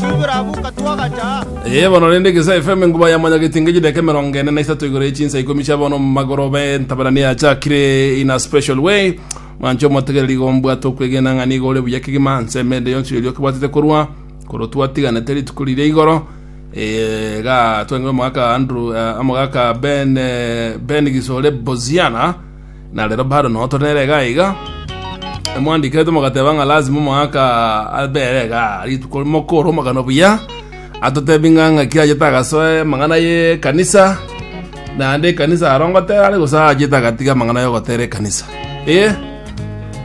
Twiburabuka twagacha. Eye bono rende Gesa FM nguba ya manya gitinge jideka emerongo ene na isato igoro y'echinsa ikomi chia bono magoro be ntabarani yachakire in a special way mwanche omotegereri gombwate okwegena ng'a nigo ore buya kegima nse emende yonsi yoria okebwatete korwa koro twatiganete rituko riria igoro eh, ga twenge omogaka Andrew eh, omogaka Ben eh, Ben Gisore Boziana na rero bado no tore nere iga iga emwandikerete mogateba ng'a lazima omwaka abere iga rituko mokoro omogano buya atotebi ng'a ng'a kira achete agasoe amang'ana ye kanisa naende ekanisa aro ngotera are gose achete agatiga amang'ana ya ogotera ekanisa eh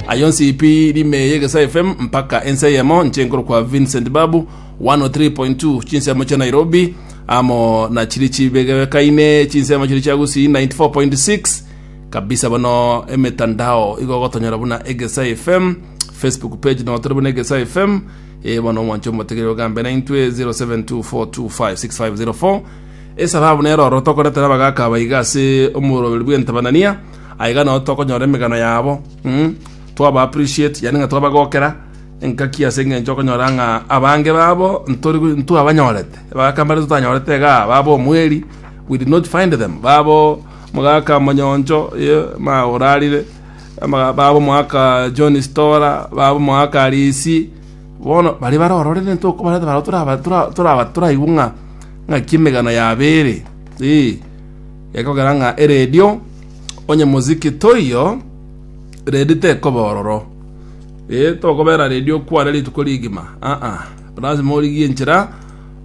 ayo nsipi rime ya egesae fm mpaka ense eyemo inche nkorokwa vincent babu 103.2 Chinsemo chia Nairobi amo na chiri chibegekaine chinsemo chiri chia Gusii 94.6 kabisa bono emetandao igo gotonyora buna Egesa FM Facebook page no tore buna Egesa FM e bono omwancho omotegere ogambe na intwe 0724256504 esababu nero oro tokoretera abagaka abaiga ase omoroberi bw'entabanania aiga no tokonyora emegano yabo mm? twaba appreciate yani ng'a twabagokera Engaki ase engencho okonyora ng'a abange babo ntori- ntwabanyorete, abagaka mbare totanyorete iga aa, babo omweri, we did not find them, babo omogaka Monyoncho, eh, ma orarire, ama- babo omogaka John Stora, babo omogaka Risi, bono baria bare ororere ntokobareta barabwo toraba- tora- toraba toraigwe ng'a ng'aki emegano yabo ere, eeh. Gekogera ng'a eredio onye moziki toiyo, redi tekoba ororo. Ee, tokobera redi okwane rituko rigima, aa, lasima origie enchera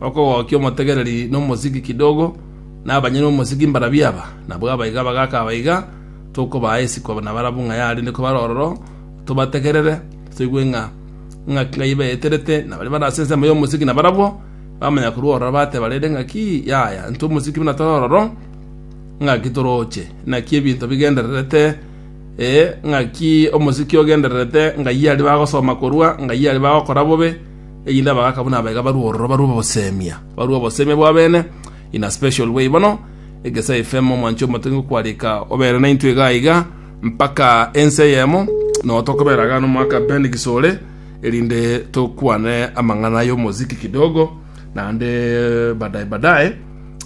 okogokia omotegereri na omosiki kidogo, na abanyene b'omosiki mbarabio aba, nabwo abaiga bagaka abaiga, tokobaa isiko nabarabwo ng'a yarenge kobara ororo, tobategerere, toigwe ng'a ng'aki Ngai baeterete, na baria bare ase ensemo y'omosiki nabarabwo bamanya korwa ororo bateba rende ng'aki, Yaya, intwe omosiki buna tore ororo, ng'aki toroche? Naki ebinto bigendererete. Ee, ng'aki omosiki ogendererete ng'ai aria bagosoma korwa, ng'ai aria bagokora bobe, erinde abagaaka buna aba iga barue ororo, barue obosemia, barue obosemia bw'abene in a special way. Bono, Egesae FM, omwancho omote ngokwareka obere naintwe iga iga mpaka ense eyemo, noyo tokobera iga nomwaka Ben Gisore, erinde tokwane amang'ana y'omosiki kidogo, naende badaye badaye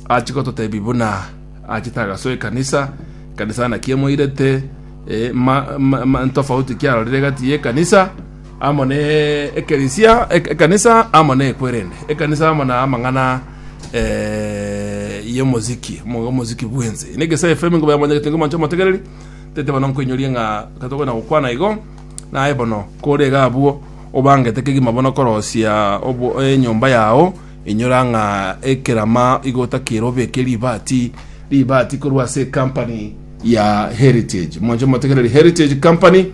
ache gototebia buna Achete agasoa ekanisa, ekanisa naki emoirete eh, ma, ma, ma, ntofauti kiarorire egati y'ekanisa amo ne ekerisia ek- ekanisa amo ne ekwerende ekanisa amo na amang'ana eh, y'omoziki mo- omoziki bwense ine gese fm ngobe yamonyegete ngo manche motegereri tete bono nkoinyoria ng'a katogwena gokwana igo naye bono kore iga abwo obangete kegima bono korosia obo- enyomba yao Inyora ng'a ekerama igota kerobe eke ribaati ribaati korwa ase ecompany ya Heritage. Mwanche motegereri Heritage Company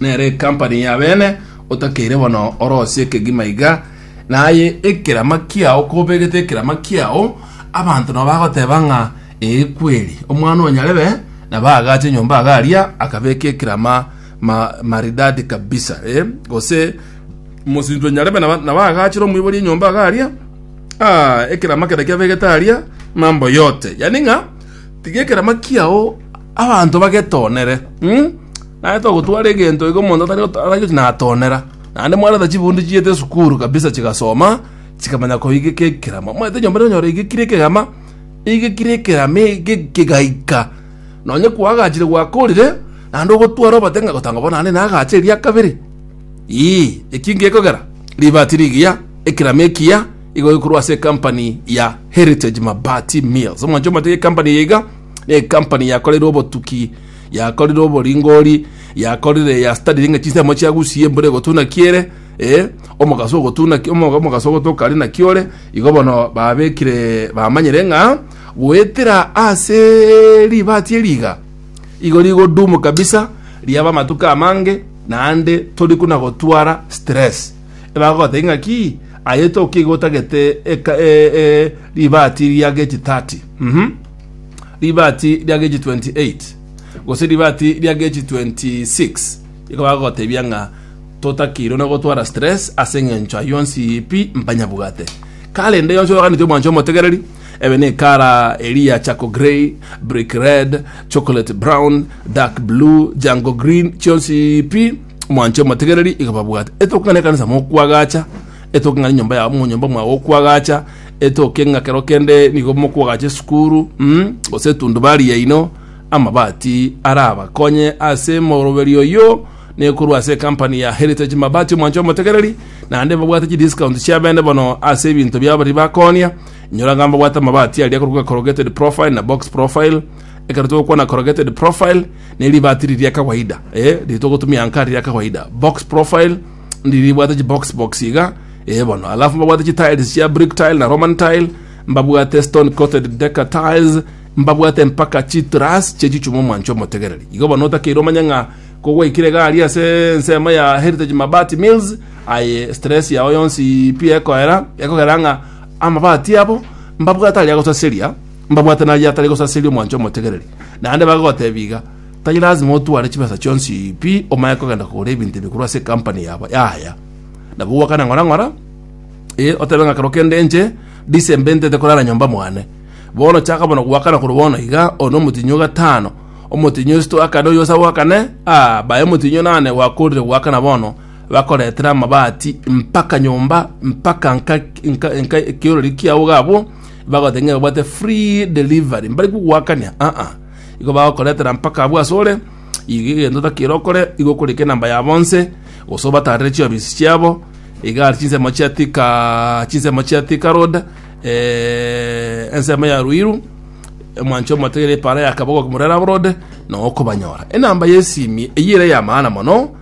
nere ecompany ya bene otakeire bono orosie ekegima iga naye ekerama kiao kobegete ekerama kiao abanto nabo bagoteba ng'a ee kweri omwana onyarebe naba agache nyomba agaria akabeka ekerama ma, maridadi kabisa eh? gose Mosinto nyarebe nabagachire omoibori enyomba iga aria, ekerama kere kiabegete aria, mambo yote. Yani ng'a tiga ekerama kiao abanto bagetonere. Naende togotwara egento iga omonto atari natonera. Naende mwareta chibunde chiete esukuru kabisa chigasoma, chikamanya koigeka ekerama. Omanyete enyomba ere onyore eigekire ekerama, eigekire ekerama egegaika. Nonye kwagachire gwakorire, naende ogotware obate ng'a bono naagache eria kabere. Ii, eki ngekogera, ribati rigiya, ekerama ekiya, igo gekorwa ase ecompany ya Heritage Mabati Mills. Omwancho omotiga ecompany eye iga, na ecompany yakorire obotuki, yakorire oboringori, yakorire ya studying ng'a chinsemo chiagusie, embura egotuna ki ere, eh, omogaso ogotuna ki, omo- omogaso ogotoka aria naki ore, igo bono babekire bamanyire ng'a goetera ase ribati eri iga, Igo rigodumu kabisa riaba amatuko amange naende tori kuna gotwara stress. Ebagogotebia ng'aki aye tokia iga otagete eka- e- e- ribati ria gechi 30 mhm ribati ria gechi 28 gose ribati ria gechi 26 igo bagogotebia ng'a totakeirwe na gotwara stress ase eng'encho ayio yonsi pi mpanyabwate karende yonsi oyoganeti omwancha omotegereri Ebe ne ekara eria charcoal grey, brick red, chocolate brown, dark blue, jungle green, chionsi pi mwanche omotegereri iga babwate. Etoke ng'a nekanisa mokwagacha, etoke ng'a nenyomba ya monyomba mwa gokwagacha, etoke ng'a kero kende nigo mokwagacha esukuru, mm, gose etundubari yaino, amabati arabakonye ase moroberio oyio nekorwa ase ecompany ya Heritage Mabati omwancho omotegereri, naende babwate chidiscount chiabene bono ase ebinto biabo baria bakonia. Inyora ng'a mbabwate amabati aria akorokwa corrugated profile na box profile. Ekero togokwana corrugated profile, ne ribati riri ria kawaida, eh, riri togotumia anka riri ria kawaida. Box profile, ndiri ribwate chi box box iga, eh, bono. Alafu mbabwate chi tiles chia brick tile na roman tile, mbabwate stone coated decker tiles, mbabwate mpaka chi truss chie chichuma omwancho omotegereri. Igo bono otakeire omanye ng'a kogwaikire iga aria ase ensemo ya Heritage Mabati Mills, aye stress yao yonsi pi ekoera, ekogera ng'a Amabati abo mbabwate aria gosaseria, mbabwate naria atari gosaseria omwancho omotegereri. Naende bagotebia iga, Tari lasima otware chibesa chionsi pi omanye kogenda kogora ebinto ebi korwa ase ekampani yabo yaaya. Nabo gwakane ng'ora ng'ora, ee, otebe ng'a ekero kende inche December intete korara nyomba mwane. Bono chaka bono gwakana korwa bono iga, oyo nomotinyi o gatano, omotinyi o sito akane, oyo ase abwo akane, aa, bae omotinyi o nane gwakorire gwakana bono, Bakoretera amabati mpaka nyomba mpaka nka nka nka ekiorori kiao gabo bagote ng'e obwate free delivery mbari kuguakania a a igo bagokoretera mpaka abwo asore iga egento otakire okore igo okorika enamba ya bonse gose obatarere chiofisi chiabo iga are chinsemo chia thika chinsemo chia thika road eh, ensemo ya ruiru omwancho omotegere epara ya kabogo murera road noo okobanyora enamba ya esimi eyio ere eyamaana mono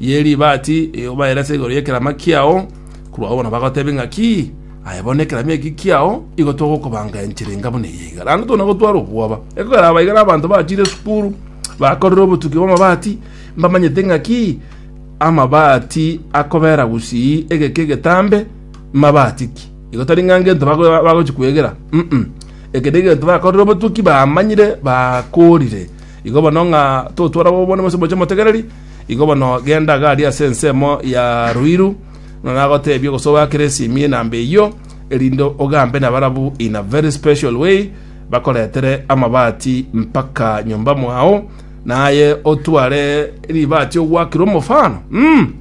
ye ribaati eyobaera ase igoro y'ekerama kiao, korwa bono bagotebia ng'a ki? Aye bono ekerama eki kiao, igo togokobanga enchera enga buna eye iga. Naende tona gotwara obwoba. Ekegaraba iga nabanto bachire esukuru, bakorire obotuki bw'amabaati, mbamanyete ng'a ki? Amabaati akobera gusii egeka egetambe, mabaati ki? Igo tari ng'a ngento bago- bagochi kwegera, mm. Eke negento bakorire obotuki, bamanyire, bakoorire. Igo bono ng'a totware bobe bono bonsi moche motegereri, igo bono genda iga aria ase ensemo ya ruiru, ng'a nagotebie gose ogoakere esimi enamba eyio, erinde ogambe nabarabu in a very special way, bakoretere amabati mpaka nyomba mwao, naye otware ribati ogoakire omofano mm,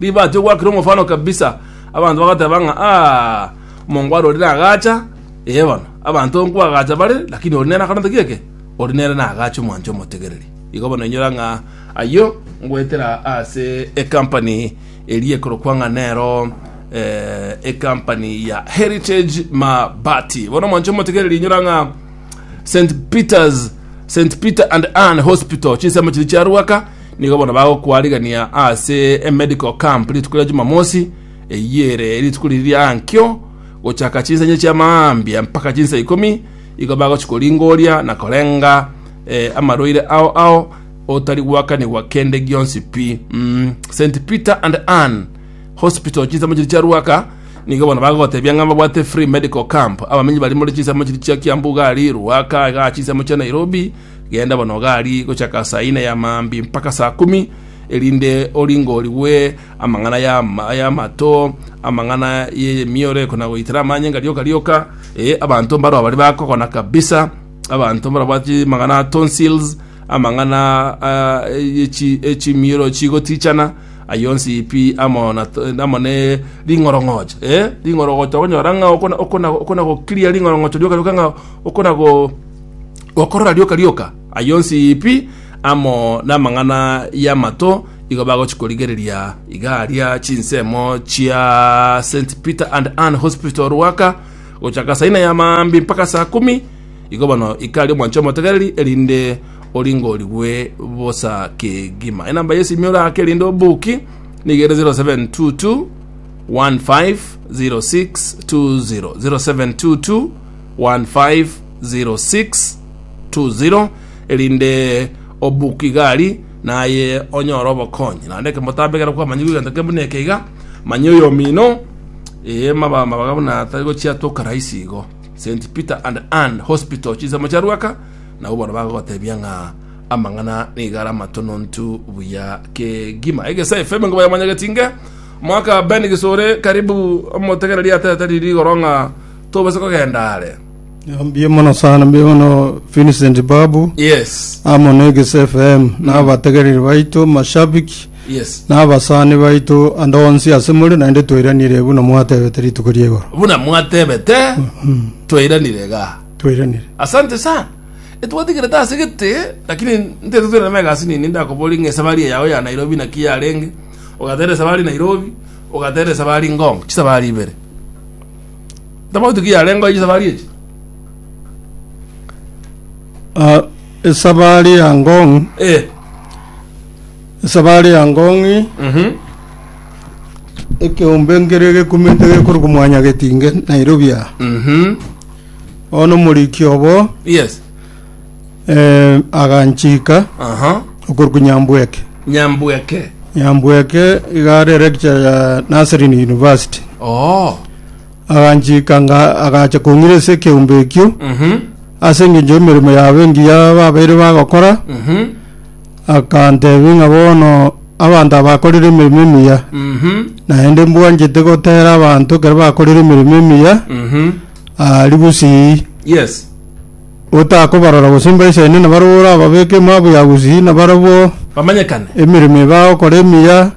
ribati ogoakire omofano kabisa, abanto bagoteba ng'a aah, omongo arorire agacha, ee bono, abanto nkwagacha bare, lakini ore nere akarenta ki eke? Oria nere nagaache omwanche omotegereri. Igo bono inyora ng'a ayio ngoetera ase ecompany eria ekorokwa ng'a nero eh, ecompany ya Heritage Mabati. Bono omwanche omotegereri inyora ng'a St Peters St Peter and Ann Hospital chinsemo chiri chiaruaka nigo bono bagokwarigania ase emedical camp rituko ria Jumamosi eyere rituko riri riankio gochaka chinsa inye chia maambia mpaka chinsa ikomi Igo bagochia koringoria na korenga amarwaire ao ao, otari gwakanigwa kende gionsi pi. St. Peter and Ann Hospital, chinsemo chiria chia Ruaka, nigo bono bagogotebia ng'a babwate free medical camp abamenyi baria more chinsemo chiria chia Kiambu gari, Ruaka igaa chinsemo chia Nairobi, genda bono gari gochaka saa ine ya maambia mpaka saa kumi, erinde oringorigwe amang'ana y'amatoo, amang'ana y'emioreko na goitera amanyinga rioka rioka, eh, abanto mbarao baria bakogona kabisa, abanto mbarabwati amang'ana a tonsils, amang'ana ah, echi echimioro chigotichana, ayo onsi pi amo na amo ne ring'orong'ocho, eh, ring'orong'ocho okonyora ng'a okona okona okona gokiria ring'orong'ocho rioka rioka ng'a okona go gokorora rioka rioka Ayio onsi pi, amo namang'ana y'amato, igo bagochia korigereria igaaria chinsemo chia St Peter and Ann Hospital Ruaka gochaka asa ina ya maambia mpaka asa kumi, igo bono ikaria omwancho omotegereri erinde oringorigwe bosa kegima. Enamba y'esimi oraake erinde obuki nigo ere 0722 150620 0722 1506 Tuziro, erinde obuke igari, naye onyore obokonyi. Naende ekemotambe ekero kwamanyigwe egento kebe buna eke iga, manya oyomino, ee, maba amabaga buna atari gochiatoka rahisi igo. St. Peter and Ann Hospital, chinsemo chia Ruaka, nabo bono bagogotebia ng'a amang'ana nigo are amatonontu buya kegima. Egesa FM ngoba yamanya getinge, mwaka Ben Gisore, karibu omotegereri aterete riri igoro ng'a tobase kogenda are. Mbuya mono sana mbuya mono Vincent Babu yes amo na Egese FM na abategereri baito mashabiki yes na abasani baito ande onsi ase more naende twairanire buna mwatebete rituko riegoro buna mwatebete twairanire iga twairanire asante sana etwatigerete ase gete lakini ntete twere na egasi nini ndakobori ng'a esabari eyao ya nairobi naki yarenge ogatera esabari nairobi ogatera esabari ngong chisabari ibere Tofauti ki yarengeo chisafari echi? Ah, esabari ya Ngong, Eh. esabari ya Ngong Mhm. ekeombe nkere gekumete gekorokwa mwanya getinge Nairobi aa. Mhm. Bono omoriki obo Yes. Eh, aganchika Aha. okorwa Nyambweke. Nyambweke. Nyambweke iga are lecture ya Nazarene University. Oh. Aganchika nga agacha kong'ira ase ekeombe ekio Mhm. ase engencho y'emeremo yabo engiya babeire bagokora Mhm. akantebi ng'a bono abanto abakorire emeremo emiya Mhm. naende mbwanchete gotera abanto ekero bakorire emeremo emiya Mhm. ah, ribusii Yes. Otakobarora gose mbaisaine na barabwo orababeke emaabu ya gusii na barabwo, Bamanyekane. emeremo ebe agokora emiya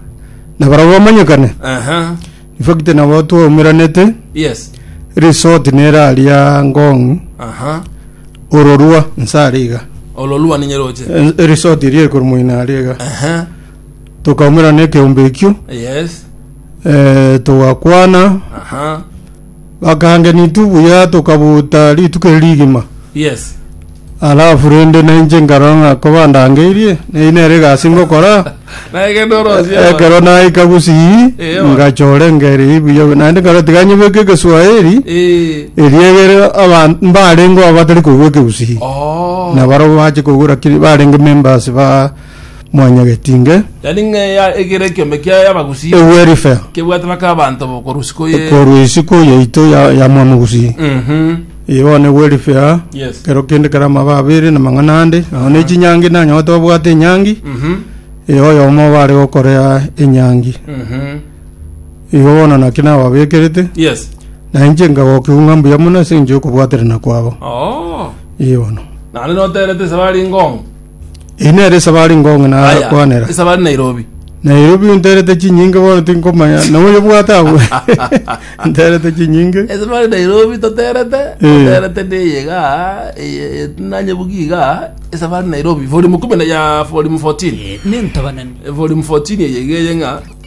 na barabwo bamanyekane. Aha. Ifakiti nabo twaumeranete, Yes. resort nere aria Ngong, Aha. ororua nse are iga. Ololua ninye roche. Eh, Eresort eria ekoro moino are iga. Aha. Tukaumerana ekeombe ekio, Yes. eh, togakwana, Aha. Bakangenitwe buya tokabuuta rituko eri rigima. Yes. Alafu rende nainche nkarora ng'a kobandangeirie, neyio nere egasi ngokora. Nagende orosie abana. Ekero naika gusii, Eyo. ngachora engeri eyio buya buya. Naende nkarora tiga nyebeke egeswahili, Eh. erio egere aban- mbarengeo abatari koigwa ekegusii. Oh. na barabwo bache kogora kiri barenge members ba Mwanya Getinge, Yani ng'eya egere ekiombe kiaye abagusii Ewelfare, kebwate bake abanto bokorusi koye korwa isiko yaito ya ya Mwamogusii. Mhm. Eye bono Ewelfare, Yes. kero kende kera amaba abere na mang'ana ande, nao ne chinyangi nanyote babwate enyangi, Mhm. eye oyomo oba are gokorea enyangi. Mhm. Igo bono naki nababekerete, Yes. na inche nkagokiwu ng'a mbuya mono ase engencho y'okobwaterana kwabo. Oh. Eye bono. Naende noterete ase bare ngong. Eye nere esabari ngong'e na Aya, kwanera. esabari Nairobi. Nairobi unterete chinyinge bono tinkomanya na oyo bwate agwe. Nterete chinyinge. esabari Nairobi toterete Eh. toterete ndeye iga eye nanye bugi iga esabari Nairobi volume kumi na ya volume 14 Eh, nentobanani volume 14 eye iga eye ng'a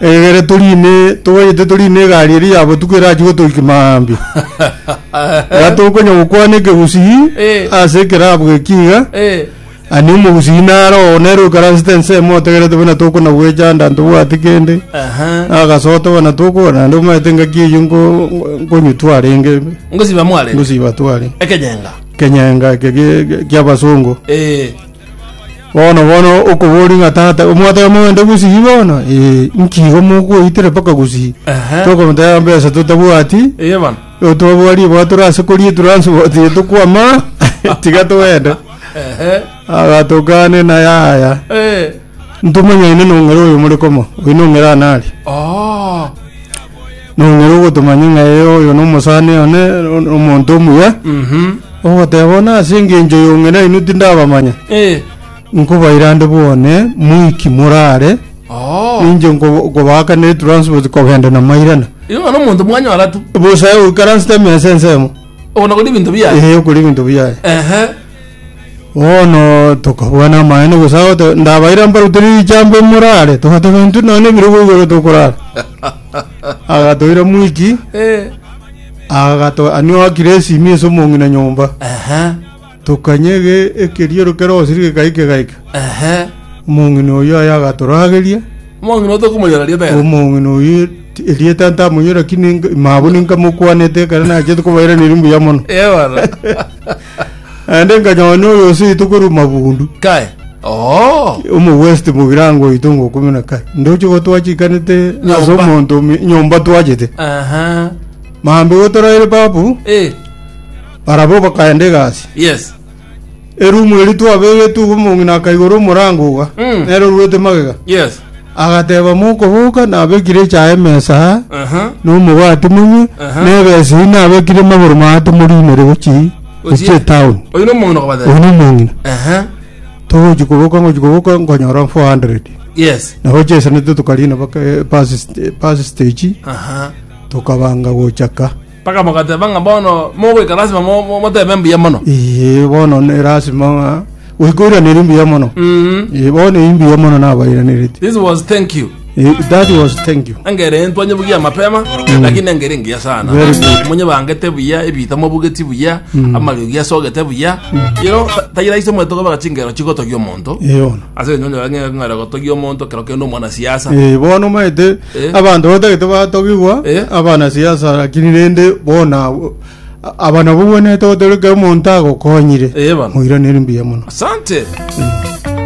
Egere toriine, toganyete toriine egari eria ya botuko erachie gotoika mambia. Iga tokonya gokwana ekegusii Eh. ase ekerabu geki iga. Eh. Ani omogusii nare oo nere okaransete ensemo otegerete buna tokona gwechanda ntobwati kende. Aha. Agasote buna tokogora naende omanyete engaki eyio nko- nkonywa twarenge Ngosiba mware. ngosiba tware. Ekenyenga. Kenyenga eke gie- gie- gi'abasongo. Eh. Bono bono okoboria ng'a tata omwataka mogende gusii bono ee nki igo mokoitire mpaka gusii Ehe. tokomotebera mbesa totabwati Eye bana. igo twabua riboa tore ase koria transport eye tokwama tiga togende Ehe. agatokane na yaya Eh. ntomanya ine nong'ere oyo more koma oino ng'ere anare Oh. nong'ere ogotomanya ng'a ee oyo nomosani one o- omonto omuya Mhm. ogoteba bono ase engencho yong'ina inwe tindabamanya Eh. nkobairande bwane moiki morare Oh. ninche nko- nkobaaka ne transport kogenda na mairana Igo no muntu mwanyora tu. bosae oikaransete emesa ensemo Ona kodi bintu biya. ee okori ebinto biaye Ehe. bono tokabua namaene gose agote ndabaire mbarutire richambe morare togateba intwe nonye ebirogo igoro tokorara agatoira mwiki Eh. agato anio akire esimi ase omong'ina nyomba Aha. tokanyege ekeriero kero osiri gegaike gaika Aha. omong'ina oyo aye agatorageria Omong'ina otokomonyora ria bera. omong'ina oyo ti- erieta ntamonyora kini mabuni nkamokwanete ekero nachete kobairaneri mbuya mono Eh, bana. Naende nkanyora noyo oseito korwa mabundu, Kae. Oo. omogwesiti mogirango oito ngo ikomi na kaye, ndoche igo twachikanete ase Nyomba. omonto ome- nyomba twachete. Aha. Maambia igo toraire papu, Eh. barabwo bakaenda egasi. Yes. Erumu eri twabegetwe igo omong'ina akaigora omorango iga, Mm. nere orwete magega. Yes. Agateba, Mokoboka nabekire echae emesa aa, Aha. na omobati monywe, Aha. na ebesa eyio nabekire magoro maate moriinere gochia gochia etown. Oyo no omong'ina okobatera. Oyo nomong'ina. Aha. Togochi koboka ngochi koboka nkonyora 400. Yes. Nabo chiesenete tokariina baka eh, bus st- bus stage, Aha. tokabanga gocha ka. Mpaka bagateba ng'a bono mogoika lasima mo- motebe mbuya mono. Ee, bono ne lasima ng'a goika oiranerie mbuya mono. Mhm. Ee, bono eyio mbuya mono nabairanereti. This was thank you. Ee, that was thank you. Engere entu anyebugia mapema lakini engere engiya sana. Very good. Munye bangete buya ebita mobugeti buya amariogi asogete buya. You know, ta- tayira ise mwetoka bagachingero chigotogia omonto. Ee, bono. Ase enyonyo yange ng'ara gotogia omonto kero kende omwana siasa. Ee, bono maete Eh. abanto batagete batogigwa Eh. abana siasa lakini rende bona abo- aba nabo bwenete gotoreka omonto agokonyire Eh, bana. moiraneri mbuya mono Asante.